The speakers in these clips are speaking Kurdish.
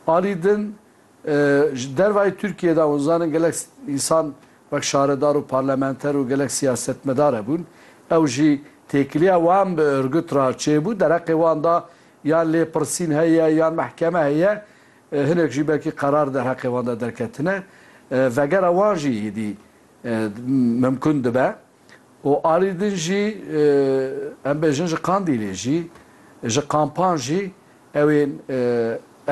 Alî din ji dervayî Tirkiyeyê de hûn zanin gelek însan wek şaredar û parlamenter û gelek siyasetmedar hebûn. Ew jî têkiliya wan bi Ürgüt re çêbû. Dereqê wan de yan lêpirsîn heye yan mehkeme heye. Hinek jî belkî qerar derheqê wan de derketine. Vegera wan jî êdî mimkûn dibe. û alî din jî em bêjin ji Qandîlê jî, ji kampan jî ew ên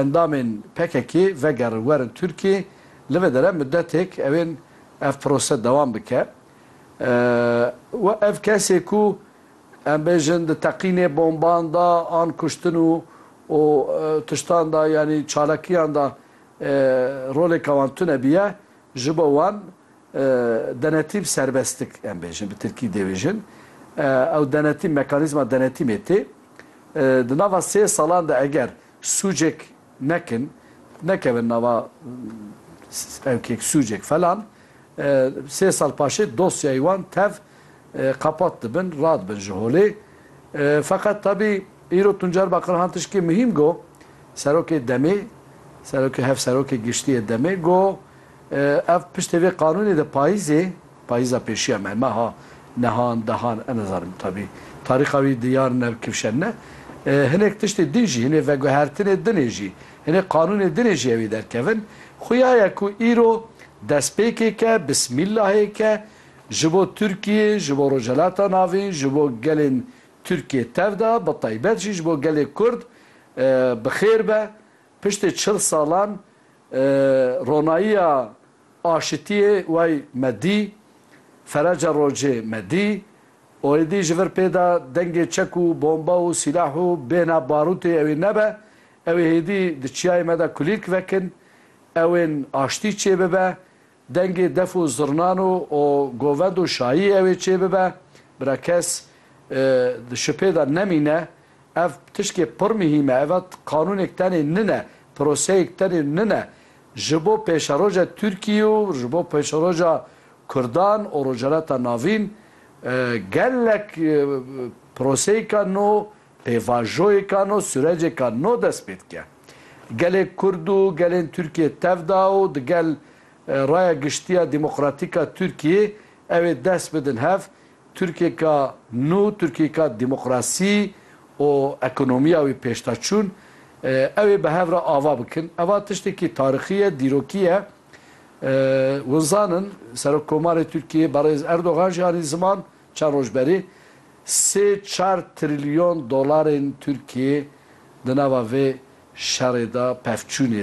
endamên PKK'ê vegerin werin Tirkiyê, li vê dere mudetêk ew ên ev prose dewam bike. Ev kesê ku em bêjin di teqînê bomban de an kuştin û û tiştan de yanî çalakiyan de rolêka wan tune bûye, ji bo wan Denetîm serbestik em bêjin bi tirkî dêbêjin. Ew denetîm mekanîzma denetîmê tê. Di nava sê salan de eger sûcek nekin, nekevin nava evkek, sûcek falan, sê sal paşê dosyayê wan tev qapat dibin, radibin ji holê. Feqet tabî îro Tuncer Bakirhan tişkê muhîm got, serokê DEM'ê, serokê hevserokê giştî yê DEM'ê got, Ev piştê vê qanûnê de payîzê, payîza pêşiya me, meha, nehan, dehan, ez nizanim tabî tarîxa wî diyar ne, kifşen ne, hinek tiştê din jî, hinê veguhertinê dinê jî, hinê qanûnê dinê jî ewê derkevin, xuya ye ku îro destpêkêke, bismîllahêke ji bo Tirkiyê, ji bo Rojhilata Navîn, ji bo gelên Tirkiyê tev da, bi taybet jî ji bo gelê Kurd bi xêr be, Piştî çil salan ronayiya aşitiyê way me dî, fereca rocê me dî, oêdî ji vir pê de dengê çek û bomba û sîlah û bêhna barûtê ewê nebe, ewê hêdî di çiyayê me de kulîlk vekin, ewên aştî çêbibe, Dengê def û zirnan û o govend û şayî ew ê çê bibe, bira kes di şipê de nemîne. Ev tişkê pir mihîm e. Ev qanûnêk tenê nine, proseyêk tenê nine. Ji bo pêşeroja Tirkiyê û ji bo pêşeroja Kurdan û Rojhilata Navîn gelek proseyêka nû Pêvajoyêka no surecêka no dest pê dike. Gelê Kurd û gelên Tirkiyê tev da û di gel raya giştiya demokratîka Tirkiyê ew ê dest bidin hev Tirkiyêka nû, Tirkiyêka demokrasî û ekonomiya wî pêşdaçûn ew ê bi hev re ava bikin. Eva tiştekî tarixî ye, dîrokî ye. Hûn zanin Serokkomarê Tirkiyê Berêz Erdogan jî anî ziman Çar roj berê sê çar trilyon dolarên Tirkiyê di nava vê şerê de pevçûnê.